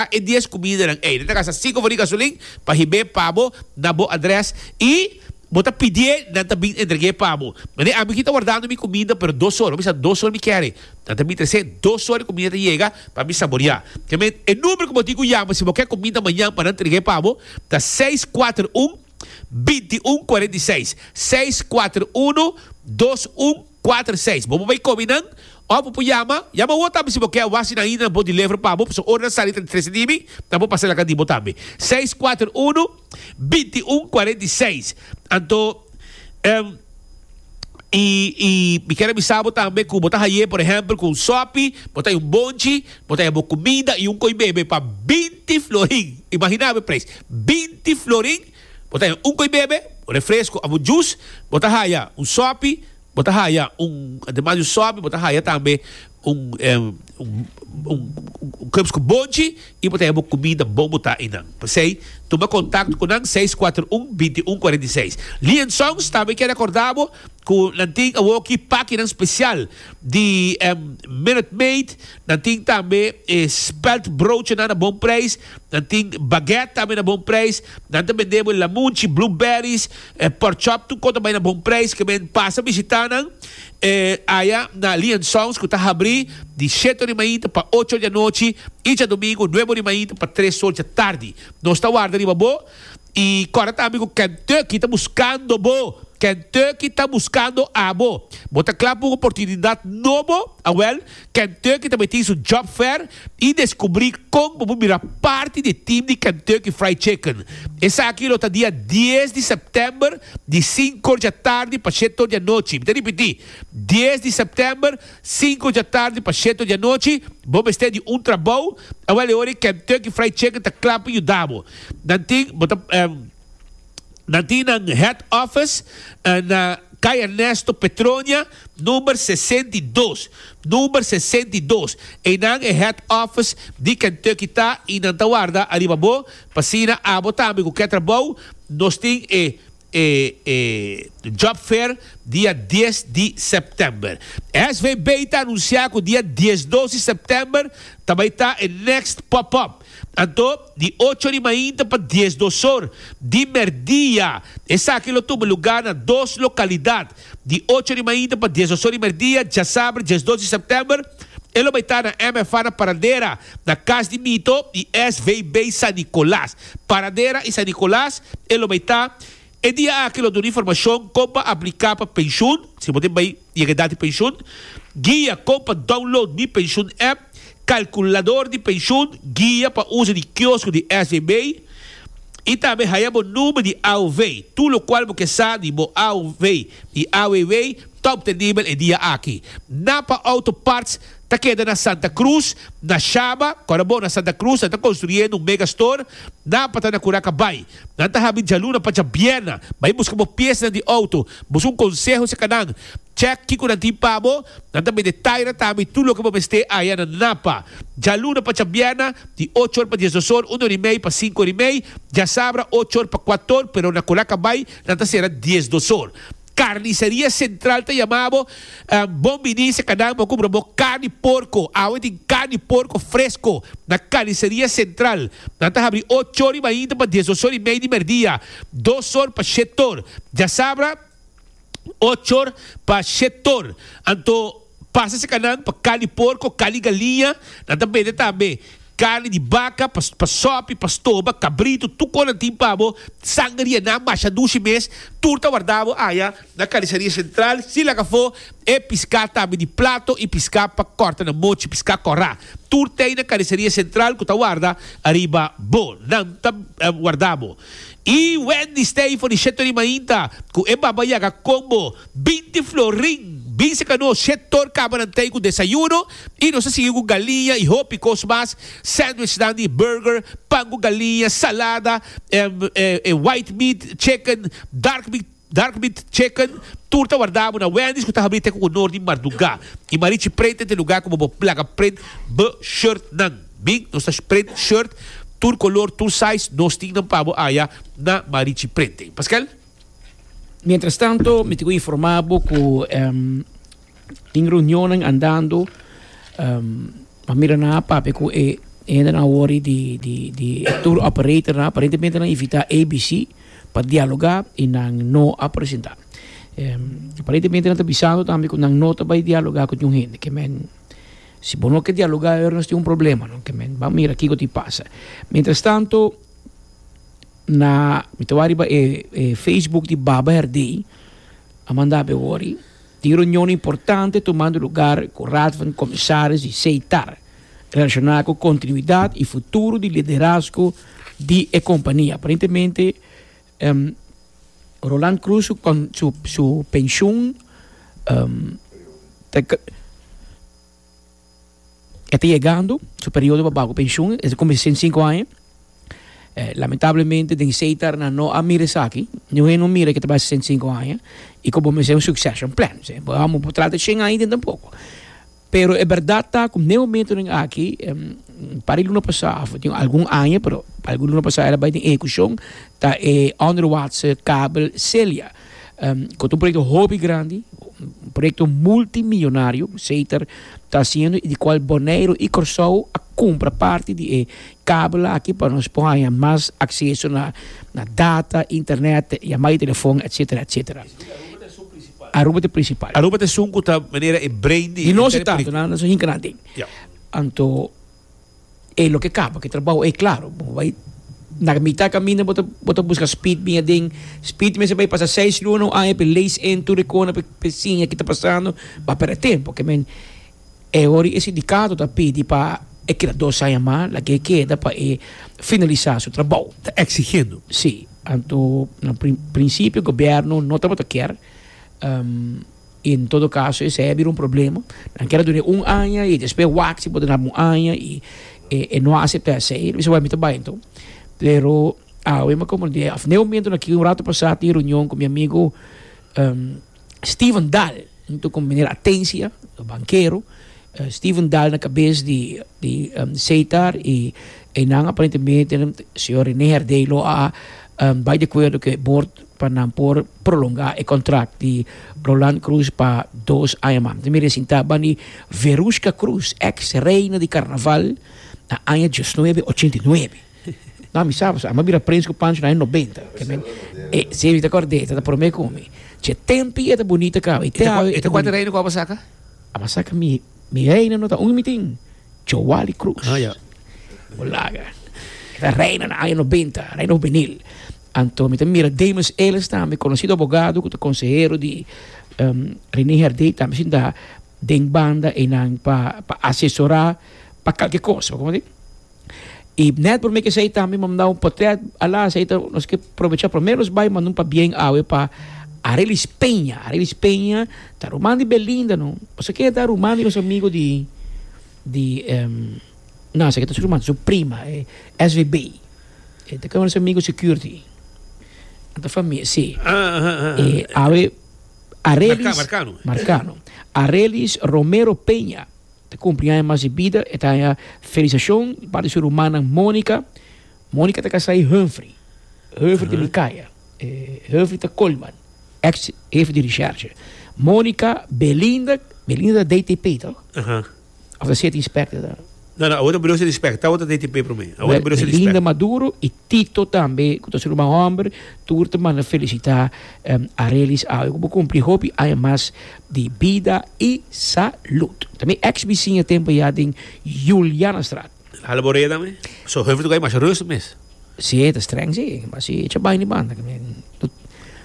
a e dies kumidanan ei. Nan ta gasta sinku for di gasolin pa hib'é pa bo na bo adrès i bo ta pidié nan ta bin entreg'é pa bo. Manera ami kita wardando mi kumida pero dos or, mi sa dos or mi kere, nan ta bin tres'é dos or di kumida ta yega pa mi saboriá. Kèmen e number ku bo tin ku yama si bo kè kumida mañan pa nan treg'é pa bo ta seis kuater un binti un kuarenta i seis, seis kuater uno dos un. Kuater seis. Bo por bai kobi nan, òf bo por yama, yama wou tambe si bo ke a wasi nan ainda nan bo deliver pa bo, pasobra ora nan sali tra di trese dimi, nan por pasa laga di bo tambe. Seis kuater unu, binti un kuarenta i seis. Anto, em, i, i mi kier a bisa bo tambe ku bo ta haye, por ehèmpel, ku un sòpi, bo ta haye un bonchi, bo ta haye bo kumida i un koi bebe pa binti florin. Imaginá bo e preis, binti florin Bo ta haya un koe bebe, un refresco of un juice, bo ta haya un sopi, bo ta haya un, ademas di un sopi bo ta haya tambe un un cups cu bonchi y bo ta haya bo comida bon bo ta einan. P'esey tuma contacto cu nan seis cuatro un binti un cuarenta y seis. Lee and Sons tambe kier recorda bo cu nan tin awoki pakinan special di Minute Maid, nan tin tambe e spelt broodjenan a bon prijs. Nan tin baguette tambe na bon prijs. Nan ta bende bo lamunchi, blueberries, pork chop tur cosa bay na bon prijs ke men pasa bishita nan aya na Lee and Sons cu ta habri di shete ora di mainta pa ocho ora di anochi y djadomingo nuebe ora di mainta pa tres ora dja tardi. Nos ta warda riba bo y corda tambe cu Kentucky ta buscando bo. Kentucky ta buscando abo. Bo ta cla pa un oportunidad nobo? Awel. Kentucky tambe tin su Job Fair i deskubrí kon bo por bira parti di e team di Kentucky Fried Chicken. Esaki lo ta dia dies di sèptèmber di sinko djatardi pa sheto dianochi. Mi ta ripití, dies di sèptèmber, sinko djatardi pa sheto dianochi. Bo mester di un trabou, awèl e ora ei Kentucky Fried Chicken ta kla pa yuda bo. Nan tin, bo ta. Na di nan head office na Kay Ernesto Petronia number sesenta i dos, number sesenta i dos, einan e head office di Kentucky ta y nan ta warda ariba bo pasina abo tambe cu ke trabou nos tin e e e job fair dia dies di September. SVB ta anuncia cu dia diesdos di September ta bay ta e next pop up. Anto, di ocho di mainta pa dies dosor di merdia. Esaki lo tuma lugá na dos lokalidat. Di ocho di mainta pa dies dosor di merdia, djasaber djes dos di sèptèmber, e lo bai ta na MFA na Paradera, na Cas di Mito di SVB San Nicolas. Paradera i San Nicolas e lo bai ta. E dia aki lo duna informashon kon pa apliká pa penshun, si bo tin bai. Yega e dati penshun, guia kon pa download Mi Pensioen app, kalkulador di penshun, guia pa uso di kiosko di SEB i tambe haña bo number di AOW, tur lokual bo ke sa di bo AOW i AWW ta obtenibel e dia aki. Napa Auto Parts ta keda na Santa Cruz, na Shaba, Cora Bono, Santa Cruz, nan ta konstruye nun mega store. Napa ta na Curaca Bay. Nan ta habi djaluna pa djabièrna. Bai buska bo piesnan di outo. Busca un conseho si canan. Check kico nan tin pa bo. Nan ta bende taira tambe tur loke bo mester aya na Napa. Djaluna pa djabièrna, di ocho or pa diesdos or, un or y mei pa cinco or y mei, djasabra ocho or pa cuator, pero na Colaca Bai nan ta cera diesdos or. Carniceria Central ta yama bo, Bon bini si canan bo cumbra bo carni porco. Awe tin carni porco fresco na Carniceria Central. Nan ta habri ocho or y mainta pa diesdos or y mei di merdia, dos or pa shet or djasabra, ocho or pa shet or. Anto. Pasa sikanan pa kal di porko, kal di galiña, nan ta bende tambe karni di baka pa sòpi, pa stoba, kabritu, tur kos nan tin pa bo, sangaria, nan masha dushi mes, tur ta warda bo aya na karisaria sentral, sin laga afó e piská tambe di plato i piská pa kòrta na mochi, piská kòrá, tur t'ei na karisaria sentral ku ta warda ariba bo, nan ta warda bo. I Wendy Stay for di Shetto Rimainta ku e Baba Yaga kon bo. Bin di Florin, bin seca nos sector cabarantey cu desayuno y nos a sigui cu galiña y hopi cos mas, sandwichnan di burger, pan cu galiña, salada, e white meat chicken, dark meat dark meat chicken, tur ta warda bo na Wendy's cu ta habri te cu cu nor di marduga y marichi print ente lugar cu bo bo placa print bo shirt nan, bin nos ta print shirt tur color tur size nos tin nan pa bo aya na marichi printing, paskel. Mientras tanto, mi te informá bo ku em tin reunionnan andando, em a mira nan a papia ku e hendenan awor di di di tour operatornan, aparentemente nan invitá ABC pa dialogá i nan no a presentá. Em aparentemente nan ta bisando tambe ku nan no ta bai dialogá ku niun hende, ke men si bo no ke dialogá awer nos tin un problema no, ke men ban mira kiko tin pasa. Mientras tanto. Na mi ta wak riba e facebook di Baba Herdey a manda ape wori tin reunion importante tumando lugar ku Raad van Commissaris di Seitar relashona ku kontinuidat i futuro di liderazgo di e kompania. Aparentemente Roland Croes su penshun ta. E ta yegando su periodo pa baku penshun, e ta kuminsa sesenta i sinku aña. Lamentablemente den esei tèrna no a mira esaki, niun hende no mira ke ta bai sesenta i sinku aña i ku bo mester un succession plan. Amo por trata shen aña dentro tampoco. Pero e bèrdat ta ku den momentonan aki, un par di luna pasá òf tin algun aña, pero algun luna pasá el a bai den ehekushon, ta e onderwaartse kabel Celia. Cu ta un proyecto hopi grandi, un proyecto multimillonario, Seiter ta haciendo y di cual Boneiru y Corsou a cumpra parti di e kabel aki pa nos por haya mas acceso na data, internet, yamada di telefon, etcetera, etcetera. Aruba ta e principal. Aruba ta esun cu ta manera e brain di. Di nos e tanto, nos a hinca nan den. Anto. e loke kaba ke trabou ei klaro bo bai na mita kaminda bo ta bo ta buska speed bin aden speed mester bai pasa seis luna un aña pe lees in tur e kona pe siña ke ta pasando ba perde tempo ke men e ora e sindikato ta pidi pa e keda dos aña mas laga e keda pa e finalisa su trabou ta eksigiendo si anto na prin principio gobierno no tabata kier. In todo caso esey a bira un problema, nan kier a dun'e un aña y despues wak si por duna bo un aña y e no a acepta esey, lo bisaba mi ta bay enton. Pero awe mi a comprende, of n'e momento nan aki un rato pasa tin reunion cu mi amigo Steven Dahl hunto con meneer Atencia, bankero, Steven Dahl na cabes di di Seitar y eynan aparentemente señor Rene Herdey lo a bay de acuerdo cu e boord. pa nan por prolonga e contract di Roland Cruz pa dos aña mas. Mi resinta ban di Verushka Cruz, ex reina di carnaval, na aña diosnuebe ochenta i nuebe. No, mi sa, a mi a bira prins cu Pancho na aña nobenta. E, si, mi ta acorda d'e, e ta prome cu mi. Che tempi e ta bunita caba. E te haba, e te cuanta reina cu aba saca? Aba saca mi, mi reina no ta un mi tin, Joali Cruz. Bo laga. E ta reina na aña nobenta, reina juvenil. Anto mi ta mira Damus Ellis tambe, conocido abogado cu ta consehero di Rene Herdé tambe sinta den banda eynan pa pa asesora pa calke cos, bo comprende? Y net por mi ke esey tambe mi a manda un potret a la esey ta nos ke provecha promer nos bay mandun pabien awe pa Arelis Peña, Arelis Peña ta ruman di Belinda no, pasobra ke ta ruman di nos amigo di di. Na, esaki ta su ruman, ta su prima, e svb. E ta kaba na su amigu security. Nan ta famia, si. E awe Arelis. Marcano. Marcano. Arelis Romero Peña ta kumpli aña mas di bida. E ta haña felisashon di parti di su rumannan Monica. Monica ta kasá i Humphrey. Humphrey ta Micaya. E Humphrey ta Colman, ex hefe di recherche. Monica Belinda, Belinda ta DTP, tòg? Of ta seti inspecta ta. No no, awor broso di inspecta, tawo ta DTP prome. Awor broso di inspecta. Linda Maduro y Tito tambe cu ta su ruman homber tur ta manda felicita Arelis awe cu bo cumpli hopi aña mas di bida y salud. Ta mi ex biciña a tempo ya den Julianastraat. Hala bo reda me. So Heuvel toca e masha rustig mes. Si ta streng si, ma si e cha baña di banda.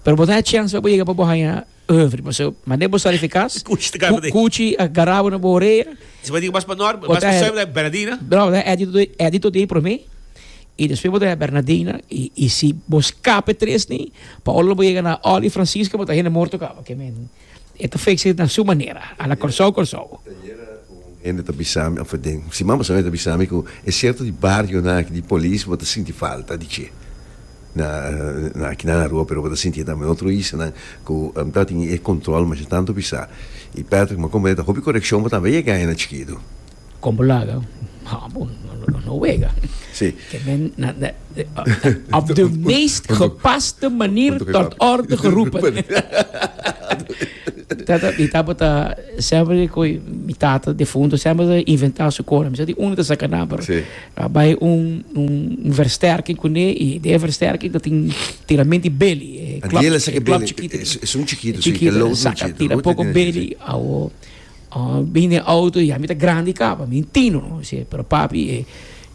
Pero bo ta haña chance pa bo yega pa bo haña. Oeuvre, mas eu mand'é bo sali efikas. Kuchi ta garabo dei. Kuchi a garabo na bo orea. Esaki bo diga mas pa Nor, mas pa Soy bo ta haya Bernadina. No, bo ta haya Edito dei prome i despues bo ta haya Bernadina i si bo skape tres ni pa ora lo bo yega na Olly Francisca bo ta hende morto kaba ke men e ta fix it na su manera a la Kòrsou Kòrsou. Ayera un hende ta bisami òf den siman pasado e ta bisami ku e sierto di barionan aki di polis bo ta sinti falta di che. Na aki nan Aruba pero bo ta sinti tambe na otro islanan ku ta tin e kontrol masha tantu bisa. I Patrick mi a komprende ta hopi korekshon bo tambe yega na chikitu. Kon bo laga bo no wega. Op de meest gepaste manier tot orde geroepen. Mi tabata semper ku mi tata defunto semper ta inventa su kos. Mi sa di unu ta saka nan pero A bai un un versterking kuné i di e versterking ta tin tirament di beli, e klòp, e klòp chikito, e chikito e saka tira poko beli, awo bin den outo i yami ta grandi kaba, mi tino, mi si e, pero papi e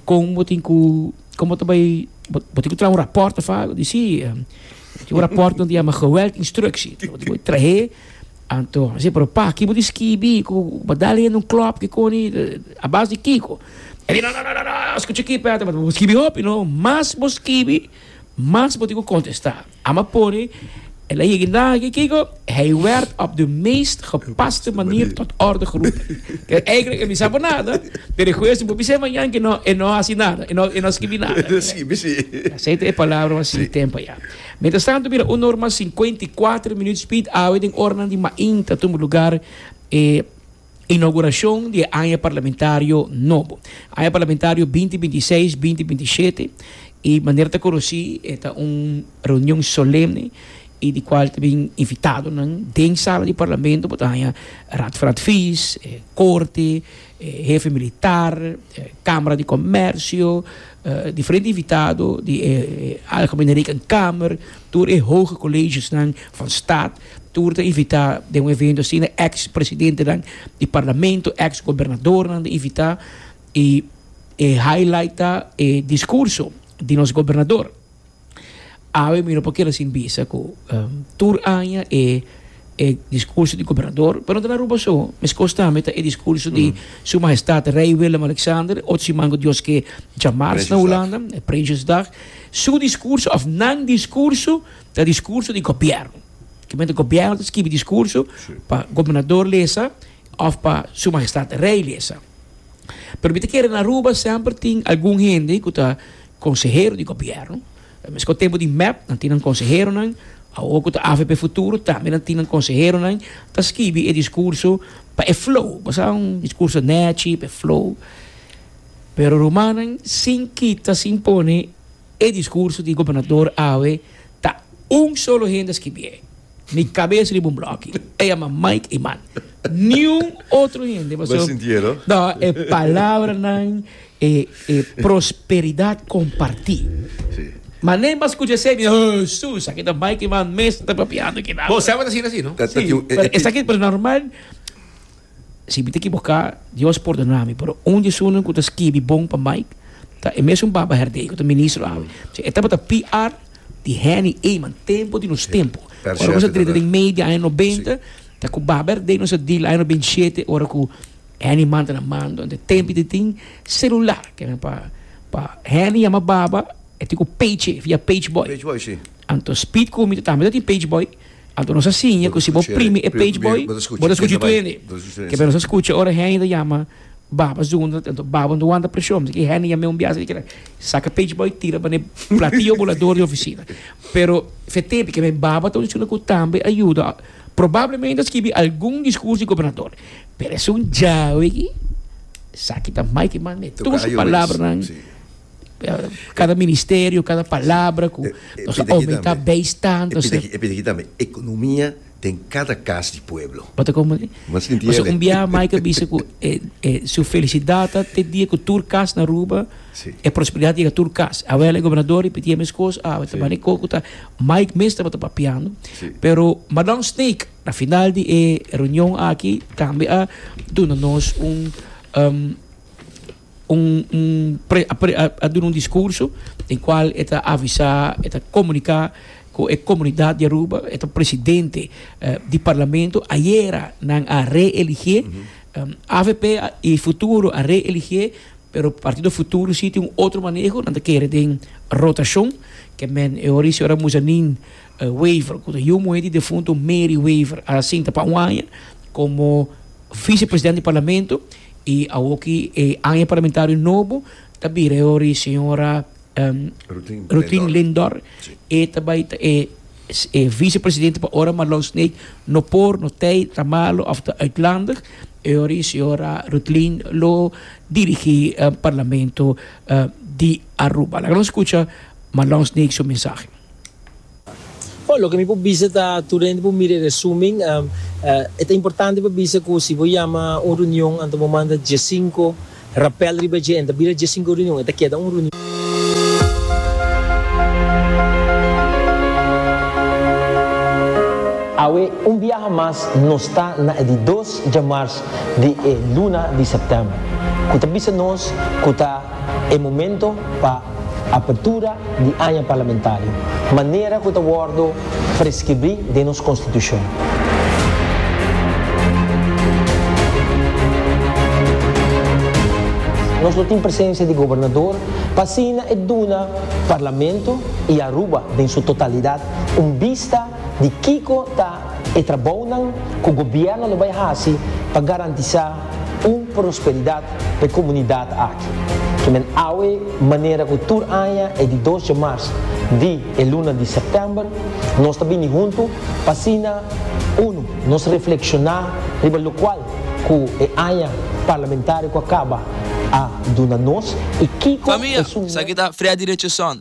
kon bo tin ku, kon bo ta bai, bo tin ku traha un rapòrt ta fabio, i di si, tin un rapòrt nan ta yama geweld instructie, bo tin ku trahe. Anto, si, pero pa ki bo di skibi ku bo dal hende un klòp kikoni, a bas di kiko? E di, no, no, no, no, skucha aki Peter, bo ta skibi hopi no, mas bo skibi, mas bo tin ku kontestá. A ma pone, el a yega indaga aki kiko, hij werd op de meest gepaste manier tot orde geroepen. Ke eigentlik e bisa bo nada, pero e goeie si bo bis'é mañan ke e no hasi nada, e no skibi nada. Esei ta e palabra mas sintèm pa Jan. Mientras tanto mira un normal cincuenta y cuatro minuut speed awe den oranan di mainta tumber lugar e inauguracion di e aña parlamentario nobo. Aña parlamentario binti binti seis, binti binti shete y manera ta conoci e ta un reunion solemne y di cual ta bin invitadonan den sala di parlamento bo ta haña raad van advies, e corte, hefe militar, Kamera di Komersio, diferente invitado di e Algemene Rekenkamer, tur e hoge kolegesnan van stat, tur ta invitá den un evento asina, eks presidentenan di parlamento, eks gobernadornan ta invitá, i e highlight ta e diskurso di nos gobernador. Awe mi no por keda sin bisa ku tur aña e e diskurso di gobernador, pero no ta na Aruba so, meskos tambe ta e diskurso di Su Mahestad Rei Willem-Alexander, otro siman ku Dios ke dja mars na Hulanda, e Prinsjesdag. Su diskurso òf nan diskurso ta diskurso di gobièrnu. Kimente gobièrnu ta skibi diskurso pa gobernador lesa òf pa Su Mahestad Rei lesa. Pero mi ta kere na Aruba semper tin algun hende ku ta. Konsehero di gobièrnu, Ta meskos tempu di mep nan tin nan konseheronan, awor ku ta avp futuro tambe nan tin nan konseheronan, ta skibi e diskurso pa e flow, bo sa un diskurso nèchi pa e flow. Pero rumannan sin kita sin pone e diskurso di gobernador awe ta un solo hende a skibié. Mi cabes riba un bloki. E yama Mike Iman. Niun otro hende pasobra. Bo sinti e no? No, e palabranan, e, e prosperidad comparti. Si. Mane bo a scucha esaki mi dice, Hesus, esaki ta Mike Iman mes ta papiando kidato. Bo saba ta asina si no? Ta, ta tin un, e, e, Pero esaki, pero normal. Si mi ta ekiboká, Dios pordona mi, pero un di sunan ku ta skibi bon pa Mike ta e mesun Baba Herdey ku ta ministro ami. P'esei e tabata PR di Henny Eman tempu di nos tempu. Ora nos a drenta den mei di aña nobenta ta ku Baba Herdey nos a deal aña nobenta i shete ora ku Henny Eman ta na mando. Te tempu te tin selular ke men pa pa Henny yama Baba e tin ku page, e fia page boy. Anto Speed ku mi tambe ta tin page boy. Anto nos a siña ku si bo primi e page boy bo ta skucha tu hende. Kepia nos a skucha ora hende ta yama baba zunda anto baba no ta wanta preshon miski hende yama e un biaha asina saka page boy tira pa ne platillo bolador di ofisina pero fet'e kebia e baba ta un esuna ku tambe a yuda probablemente a skibi algun diskurso di gobernador pero esun djawe aki esaki ta mai ki mas me tur su palabranan. cada ministerio, cada palabra cu nos a omi ta based tanto. E pita aki tambe, economia den cada cas di pueblo. Bo ta comprende? Bo sinti el'e? Pasobra un biaha Mike a bisa cu e, e, su felicidad ta te dia cu tur cas na Aruba, Si. e prosperidad yega tur cas. Awel e gobernador ripitié e mes cos, awe ta bani coco ta, Mike mes tabata papiando. Si. Pero Madam Snake, na final di e reunion aki, tambe a duna nos un, um. Un a duna un discurso den cual e ta avisa, e ta comunica cu e comunidad di Aruba, e ta presidente di parlamento, ayera nan a reelige, avp y futuro a reelige pero Partido Futuro si tin un otro maneho, nan ta kere den rotacion, ke men e ora y señora Muzanin Wever cu ta yu muhe di defunto Mary Wever a sinta pa un aña como vicepresident di parlamento. I awoki e aña parlamentario nobo ta bira e hora di señora Rutin Lindor. E ta bai ta e vicepresidente pa ora, ma los n'e no por, no tei, ta malo of ta uitlandig. E hora di señora Rutlin lo dirigi parlamento di Aruba. Laga nos skucha Malons n'e su mensahe. Bo, loke mi por bisa ta, tur hende por mira e resumen. E ta importante pa bisa cu si bo yama un reunion, anto bo manda diescinco rapel riba dje, e no ta bira diescinco reunion, e ta keda un reunion. Awe un biaha mas nos ta na e di dos djamars di e luna di september, cu ta bisa nos cu ta e momento pa. Apertura di aña parlamentario, manera cu ta wordo prescribri den nos Constitucion. Nos lo tin presencia di Gobernador pa asina e duna Parlamento y Aruba den su totalidad un bista di kico ta e trabounan cu Gobierno lo bay haci pa garantisa Un prosperidat p'e komunidat aki, ku men awe manera ku tur aña e di dos dje mars di e luna di sèptèmber nos ta bini huntu pa asina, unu, nos reflekshoná riba lokual ku e aña parlamentario ku a kaba a duna nos i kiko esun mèt. Familia, esaki ta Freddy Richardson,